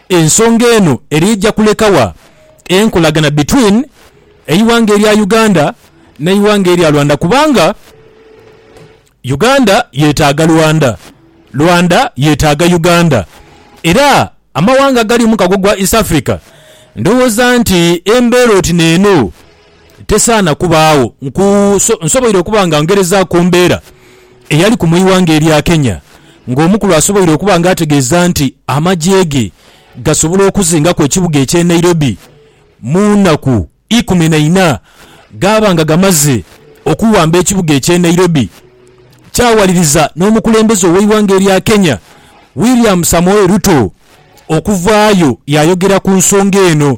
Ensonga eno eri eja kuleka wa enkolagana between eighanga erya Uganda ne eighanga erya Rwanda kubanga Uganda yetaga Rwanda, Rwanda yetaga Uganda era amawanga agari mukago gwa East Africa ndhowoza nti embera oti neeno. Tesaana kubaagho. Nku, nso, nsoboire okuba nga ngerezaaku ku mbeera eyaliku mu ighanga erya Kenya, nga omukulu asoboire okuba nga ategeeza nti amagye ge gasobola okuzingaku ekibuga eky'e Nairobi mu naku ikumi na ina. Gaaba nga gamaze okuwamba ekibuga eky'e Nairobi, kyawaliriza n'omukulembeze ow'eighanga erya Kenya, William Samoei Ruto okuvaayo yaayogera ku nsonga eno.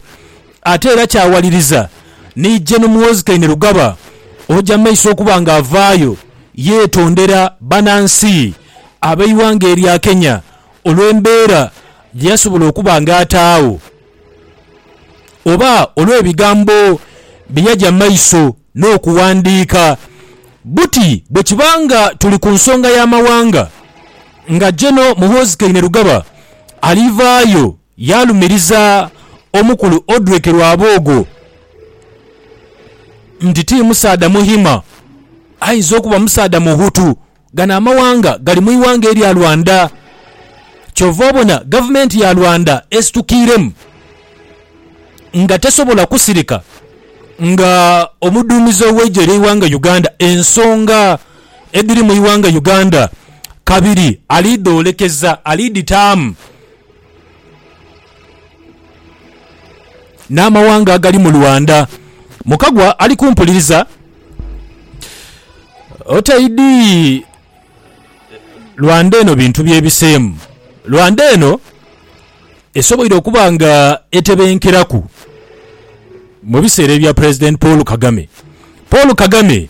Ate era kyawaliriza ni Gen Muhoozi Kainerugaba oja mu maiso okuba nga avaayo yetondera banansi abeighanga erya Kenya olwembeera gyeyasobola okuba nga ataagho oba olwebigambo byeyaja maiso nokuwandiika buti bwekiba nga tuli ku nsonga yamawanga nga Gen Muhoozi Kainerugaba alivaayo Yaalumiriza omukulu Odrick Rwaboogo nti ti musaadha Muhima, aidha okuba musaadha Muhutu. Gano amawanga gali mu ighanga erya Rwanda. Kyova obona gavumenti ya Rwanda esitukiiremu nga tesobola kusirika nga omuduumizi ow'eigye ly'eighanga Uganda ensonga edhiri mu ighanga Uganda kabiri ali dhoolekeza, ali dhitaamu. N'amawanga agali mu Lwanda. Mukagwa ali kumpuliriza otaidhi Lwanda eno bintu byebiseemu. Lwanda eno esoboire okuba nga etebenkeraku mu biseera ebya Pulezidenti Paul Kagame. Paul Kagame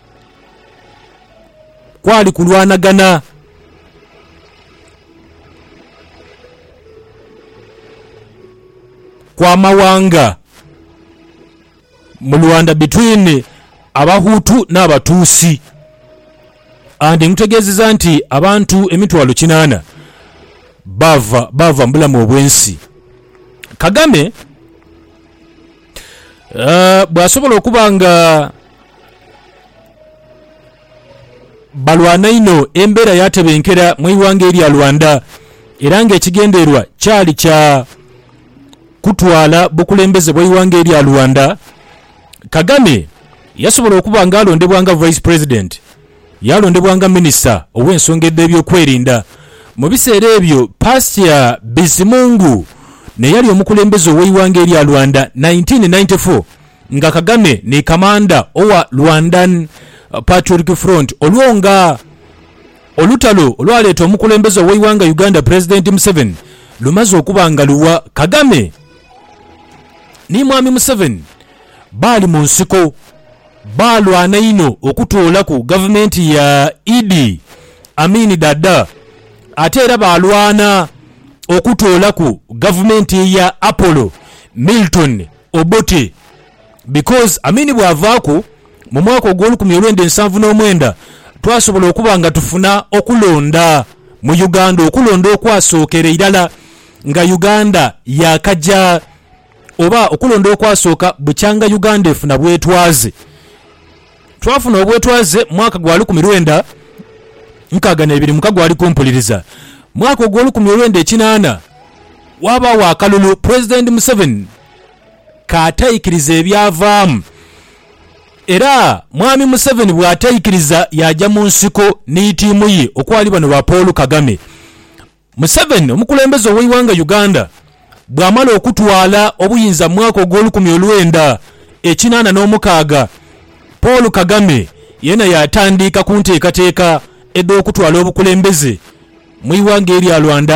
kwali kulwanagana. Kw'amawanga mu Rwanda between Abahutu n'Abatuusi and nkutegeezeza nti abantu emitwalo kinaana baava baava mu bulamu obw'ensi. Kagame. Ah, bwasobola okuba nga balwana inho embeera yatebenkera mu ighanga erya Rwanda era nga ekigendererwa kyali kya kutwala bukulembeze bwa ighanga erya Rwanda, Kagame yasobola okuba nga alondebwa nga Vice President. Yalondebwa nga minisita ow'ensonga edh'ebyokwerinda. Mu biseera ebyo Pastia Bizimungu n'eyali omukulembeze ow'eighanga erya Rwanda, nineteen ninety four, nga Kagame ni kamanda owa Rwandan Patriotic Front olwo nga olutalo olwaleeta omukulembeze ow'eighanga Uganda Pulezidenti Museveni lumaze okuba nga luwa, Kagame ni Mwami Museveni baali mu nsiko Baalwana inho okutoolaku gavumenti ya Idi Amin Dada ate era baalwana okutoolaku gavumenti ya Apollo Milton Obote because Amin bwavaaku mu mwaka ogw'olukumi olwenda ensanvu n'omwenda twasobola okuba nga tufuna okulonda mu Uganda okulonda okwasookera irala nga Uganda yaakaja oba okulonda okwasooka bukyanga Uganda efuna bwetwaze. Twafuna obwetwaze mwaka gwa lukumi lwenda nkaaga n'ebiri muka gwali kumpuliriza. Mwaka ogw'olukumi olwenda ekinaana waabaawo akalulu Pulezidenti Museveni k'ataikiriza ebyavaamu era Mwami Museveni bw'ataikiriza yaaja mu nsiko ni tiimu ye okwali bano ba Paul Kagame. Museveni omukulembeze ow'eighanga Uganda bw'amala okutwala obuyinza mu mwaka ogw'olukumi olwenda ekinaana n'omukaaga, Paul Kagame yena yaatandiika ku nteekateeka edh'okutwala obukulembeze mu ighanga erya Rwanda.